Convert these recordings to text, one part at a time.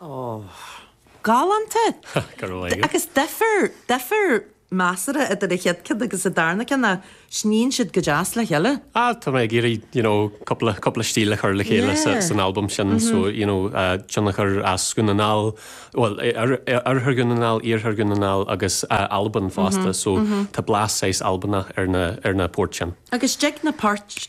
Oh. Galánta! Go raibh maith agat. Agus difear, difear measartha idir an chéad ceann agus an darna ceann ach sníonn siad go deas le chéile. Ah, tá mé ag iarraidh, you know, cúpla, cúpla stíl a chur le chéile sa, san albam sin so, you know, tionchar as Dhún na nGall, bhuel, oirthear Dhún na nGall, iarthar Dhún na nGall agus Albain fosta so tá blas saghas Albanach ar na, ar na poirt sin. Agus thig na poirt.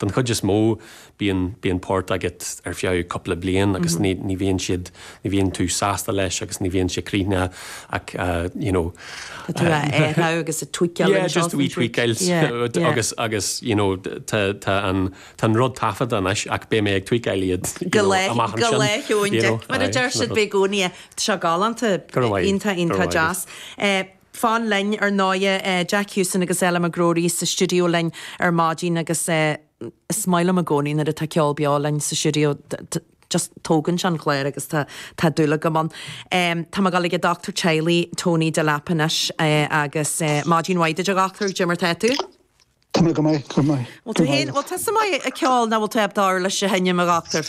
den chuid is mó, bíonn, bíonn poirt agat ar feadh cúpla bliain agus ní, ní bhíonn siad, ní bhíonn tú sásta leis agus ní bhíonn sé críochnaithe ach you know. Tá tú ag athrú agus ag tweakáil anseo is ansiúd. Yeah, just a wee tweakáil agus, agus you know, tá, tá an, tá an rud taifeadta anois ach beidh mé ag tweakáil iad go lá, go lá Sheon Dic. Mar a deir siad beidh i gcónaí, tá sé galánta, iontach, iontach deas. fan linn, ar ndóighe. Jack Houston agus Ella McGrory sa stiúideo linn ar maidin agus is maith liom i gcónaí nuair atá ceol beo linn sa stiúideo, just tógann sé an clár agus tá dúil agam ann. Tá mé ag dul ag an dochtúir teaghlaigh, Tony Delap, anois agus maidin mhaith duit, a dhochtúir, caidé mar tá tú? Tá mé go maith, go maith. Bhuel, tú fhéin, bhuel, tusa maith ag ceol, nach bhfuil tú? Ab d'fhearr leis a sheinm, a dhochtúir?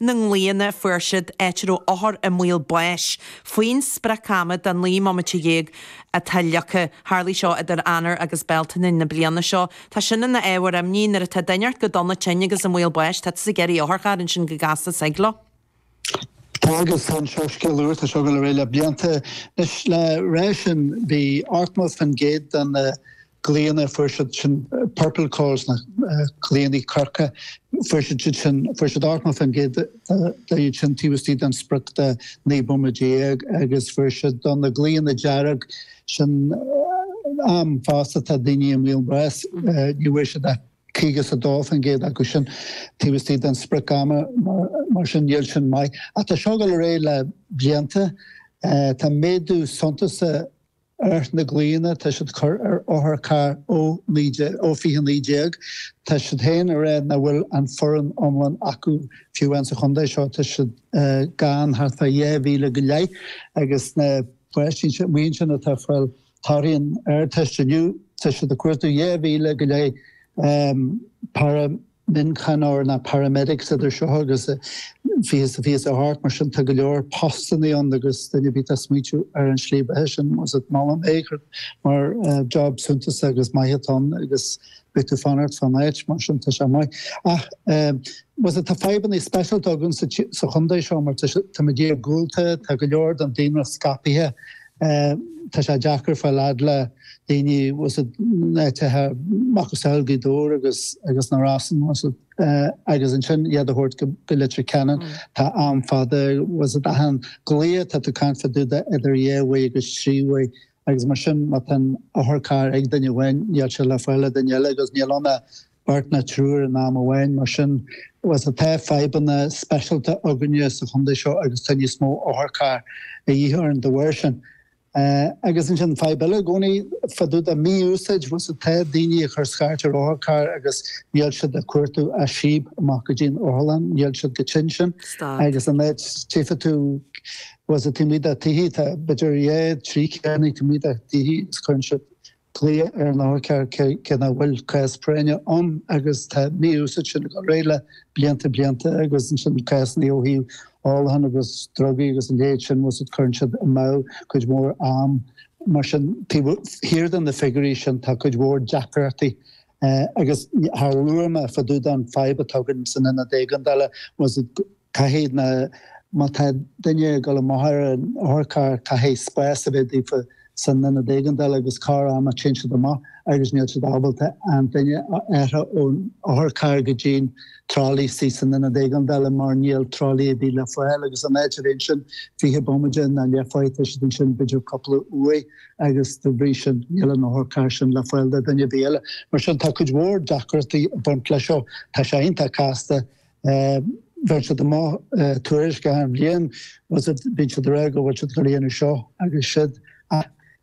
na nglaonna fuair siad áit a raibh othair i mbaol báis faoin sprioc-ama de naoi mbomaite déag atá leagtha. Tharlaigh seo idir Eanáir agus Bealtaine na bliana seo. Tá sin ina ábhar imní. Nuair atá duine éirithe go dona tinn agus i mbaol báis, tátas ag iarraidh otharcharr ansin go gasta soigh leo. Tá agus chan seo scéal úr, tá seo ag gabháil ar aghaidh le blianta. Anois le rá sin bhí ochtó fán gcéad de na. glaonna, fuair siad sin purple calls na glaonna corcra, fuair siad siad sin, fuair siad 80% de iad sin taobh istigh den sprioc de 19 bomaite agus fuair siad de na glaonna dearg sin am fosta tá daoine i mbaol báis ní bhfuair siad ach 52% acu sin taobh istigh den sprioc ama mar sin níl sin maith ach tá seo ag gabháil ar aghaidh le blianta tá méadú suntasach Ar na glaonna atá siad ag cur ar otharcharr ó 2019. Tá siad féin ag rá nach bhfuil an foireann iomlán acu fiú amháin sa chontae seo tá siad gann thart fá dhá mhíle go leith agus na páistí sin, mar sin atá ag fáil torthaí an Ardteist inniu tá siad ag cuartú dhá mhíle go leith para mhíochaineoir nó Paramedics idir seo agus 2028 mar sin tá go leor postanna ann agus duine ar bith atá ag smaointiú ar an slí beatha sin you see molaim é i gceart mar job suntasach is maith atá ann agus beidh tú ag fanacht fán áit mar sin tá sé maith ach you see tá fadhbanna speisialta againn sa chontae seo mar tá muid iargúlta tá go leor den daonra scaipithe e Tá sé deacair fáil fhad le daoine sna háiteacha macasamhail Gaoth Dobhair agus agus na Rosann e agus ansin iad a thabhairt go go Leitir Ceanainn. Tá am fada i gceist achan glao atá tú caint fá dtaobh de idir dhá uair agus trí uair agus mar sin má tá an otharcharr ag duine amháin níl sé le fáil ag duine eile agus níl ann ach beirt nó triúr in am amháin. Mar sin, tá fadhbanna speisialta againne sa chontae seo agus tá níos mó otharcharr a dhíth orainn dá bharr sin. Agus ansin, fadhb eile i gcónaí, fá dtaobh de mí-úsáid, tá daoine ag cur scairt ar otharcharr agus níl siad ach ag cuartú síob amach go dtí an otharlann, níl siad chomh tinn sin. Agus an áit, tchífidh tú, taobh amuigh dá dtithe, tá b'fhéidir dhá, trí charr taobh amuigh dá dtithe agus cuireann siad Glaoch ar an otharcarr cé nach bhfuil cás práinne ann agus tá an mhí-úsáid sin ag dul ar aghaidh le blianta blianta agus ansin cásanna ó thaobh ólacháin agus drugaí agus a leithéid sin agus cuireann sin amú cuid mhór am mar sin taobh thiar de na figiúirí sin tá cuid mhór deacrachtaí agus labhair muid fá dtaobh de an fadhb atá againn san ionad éigeandála agus Caithfidh na, má tá duine ag dul amach ar an otharcharr, caithfidh spás a bheith daofa san ionad éigeandála agus corruair tá siad ansin agus níl siad ábalta an duine a aistriú ón otharcharr go dtí an tralaí istigh san ionad éigeandála mar níl tralaí ar bith le fáil agus in áit a bheith ansin fiche bomaide nó leathuair tá siad ansin b'fhéidir cúpla uair agus dá bhrí sin níl an otharcharr sin le fáil do dhuine ar bith eile. Mar sin tá cuid mhór deacrachtaí ag baint leis seo. Tá sé iontach casta Bheadh sé go maith tuairisc a thar an bhliain, bhí siad réidh go bhfuil siad ag dhéanamh seo agus siud ach